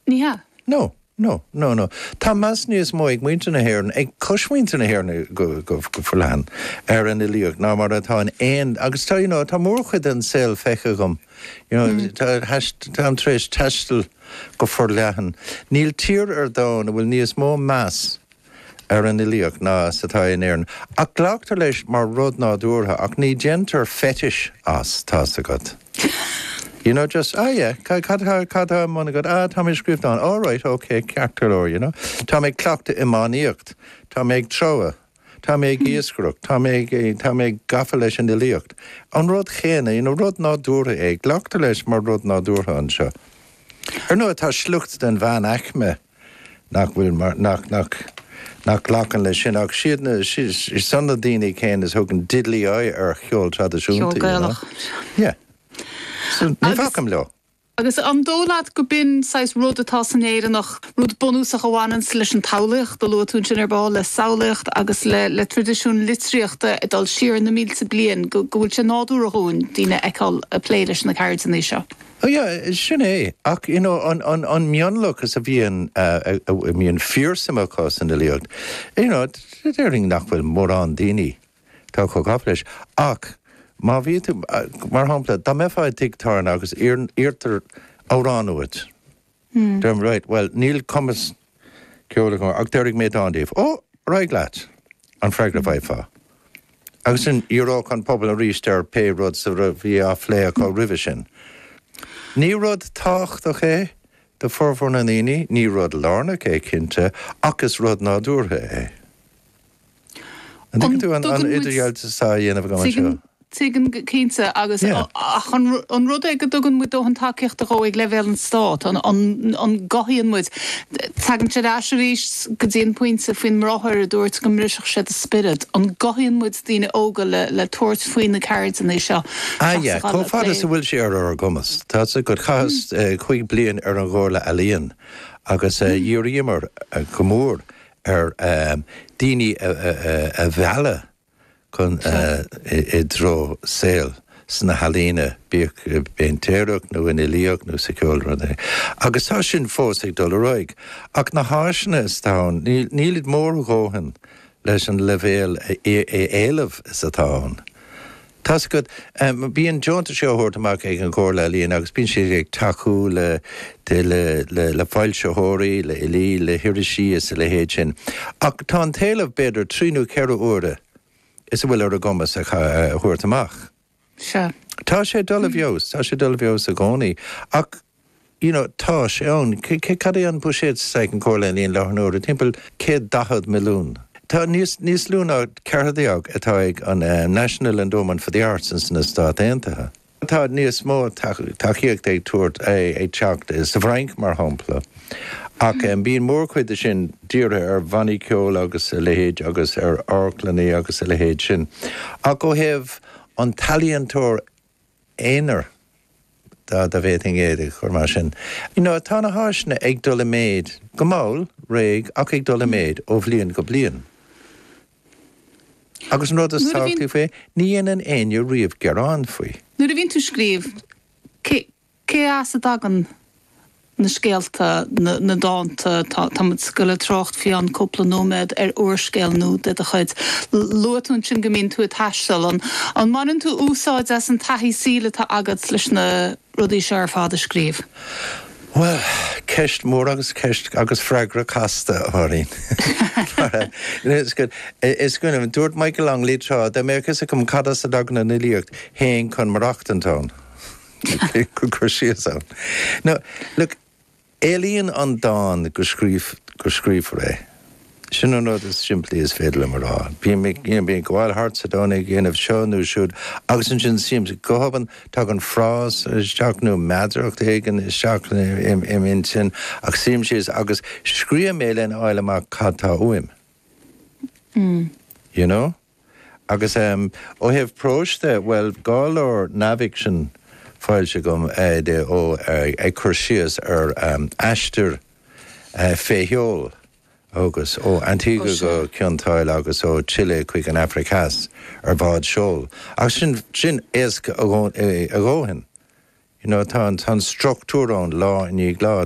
Ní hea. No, no, no, no. Tá meas níos mó ag muintir na hÉireann, ag cosmhuintir na hÉireann go forleathan, ar an fhilíocht ná mar atá in aon, agus tá, you know, tá mórchuid den saol feicthe agam, you know, táim tar éis taisteal go forleathan. Níl tír ar domhan a bhfuil níos mó meas ar an fhilíocht ná is atá in Éirinn, ach glactar leis mar rud nádúrtha ach ní déantar fetish as, tá's agat. You know, just, ah yeah, cad atá, cad atá ar bun agat? Ah, tá mé ag scríobh dán. All right, ok, ceart go leor, you know. Tá mé ag cleachtadh iománaíocht, tá mé ag treabhadh, tá mé ag iascaireacht, tá mé ag, tá mé gafa leis an fhilíocht. An rud chéanna, you know, rud nádúrtha é, glactar leis mar rud nádúrtha anseo. Ar ndóigh, tá sliocht den mheánaicme. nach bhfuil mar, nach, nach, nach nglacann leis sin ach siad na, siad san na daoine céanna is thugann diddly eye ar cheol traidisiúnta, you know. Ceol Gaelach. Yeah. So, ní bhacaim leo. Agus an dóigh leat go b'in saghas rud atá san Éireannach, rud bunúsach a bhaineann leis an tsamhlaíocht, a luaigh tú ansin ar ball, le samhlaíocht agus le, le tradisiún litríochta ag dul siar na mílte bliain, go, go bhfuil sé nádúrtha dhúinn daoine a fheiceáil ag plé leis na ceirdeanna seo? Oh yeah, sin é. Ach you know, an, an, an mionlachas a bhíonn a mbíonn fíorshuim acu san fhilíocht, you know, déarfainn nach bhfuil mórán daoine tá chomh gafa leis. Ach má bhí tú, mar shampla, dá mbeifeá i dtigh tábhairne agus iarrtar amhrán uait, Hm. Deir tú, Right, bhuel, níl cumas ceoil agam ach déarfaidh mé dán daoibh. Ó, ar aghaidh leat! an freagra a bhfaighfeá. Agus ansin dhíreodh an pobal arís ar pé rud a bhí á phlé acu roimhe sin. Ní rud tábhachtach é do formhór na ndaoine, ní rud lárnach é, cinnte, ach is rud nádúrtha é. An dtuigeann tú an idirdhealú atá á dhéanamh agam anseo? Tuigeann, cinnte, agus ach an rud é go dtugann muid dóthain tacaíochta dhó ag leibhéal an Stáit, an gcothaíonn muid, tagann sé ar ais arís go dtí an pointe faoin mbráthair a dúirt go mbrisfeadh sé do spiorad, an gcothaíonn muid daoine óga le tabhairt faoi na ceirdeanna seo seachas a dhul ag plé? Chomh fada is a bhfuil sé ar ár gcumas. Tá's agat, chaitheas cúig bliain ar an gComhairle Ealaíon agus d'iarramar go mór ar dhaoine a mhealladh chun i dtreo saol sna healaíona, bíodh i bpéintéireacht nó san fhilíocht nó sa cheol nó pé rud é. Agus tá sin fós ag dul ar aghaidh. Ach na háiseanna is atá ann, nílid mór a dhóthain leis an leibhéal éileamh is atá ann. Tá 's agat. Bíonn deontais á thabhairt amach ag an Chomhairle Ealaíon agus bíonn siad ag tacú le, le, le foilsitheoirí, le fhilí, le hirisí is a leithéid sin. Ach tá an t-éileamh b'fhéidir trí nó ceithre huaire is a bhfuil ar a gcumas a thabhairt amach. Sea. Tá sé dul i bhfeabhas, tá sé dul i bhfeabhas i gcónaí. Ach you know tá sé ann. Cad é an buiséad sa, sa Chomhairle Ealaíon i láthair na huaire? Timpeall céad daichead milliún. Tá níos, níos lú ná ceathair déag atá ag an eh, National Endowment for the Arts in sna Stáit Aontaithe. Tá níos mó tacaíochta ag tabhairt, eh, ag teacht eh, sa bhFrainc mar shampla. Ach em, bíonn mórchuid de sin dírithe ar bhannaí ceoil agus a leithéid agus ar amharclannaí agus a leithéid sin. Ach ó thaobh an t-ealaíontóir aonair dá bhféadfainn é a chur mar sin. You know, tá na háiseanna ag dul i méid, go mall, réidh, ach ag dul i méid ó bhliain go bliain. Agus an rud is tábhachtaí faoi, ní dhéanann éinne riamh gearán faoi. Nuair a bhíonn tú ag scríobh, cé. Cé as a dtagann na scéalta, na dánta? Táimid ag goil ag trácht faoi cheann cúpla nóiméad ar úrscéal nua de do chuid. Luaigh tú ansin go mbíonn tú ag taisteal. An mbaineann tú úsáid as an taithí saoil atá agat leis na rudaí seo ar fad a scríobh? Bhuel, ceist mhór agus ceist agus freagra casta, a Mháirín. Is cuimhin liom, dúirt Michael Longley tráth, dá mbeadh a fhios agam cad as a dtagann an fhilíocht, théinn chun maireachtaint ann. Go cur síos ann. Now, look, éilíonn an dán go scríof, go scríofar é. Sin an rud is simplí is féidir liom a rá. Bím ag, you know, bím ag gabháil thart sa domhan, ag déanamh seo nó siúd, agus ansin suímse, go hobann, tagann frása isteach nó meadaracht éigin isteach im, im intinn, ach suím síos agus scríobhaim é lena fháil amach cad tá uaim. You know? Agus ó thaobh próis de, bhuel, dhá leabhar neamhfhicsin foilsithe agam de ó ag cur síos ar aistear fé sheol a thugas ó Antigua go Cionn tSáile agus ó Chile chuig an Afraic Theas ar bhád seoil. Ach sin, sin éasca a dhóthain. You know, tá an structúr ann lá i ndiaidh lá.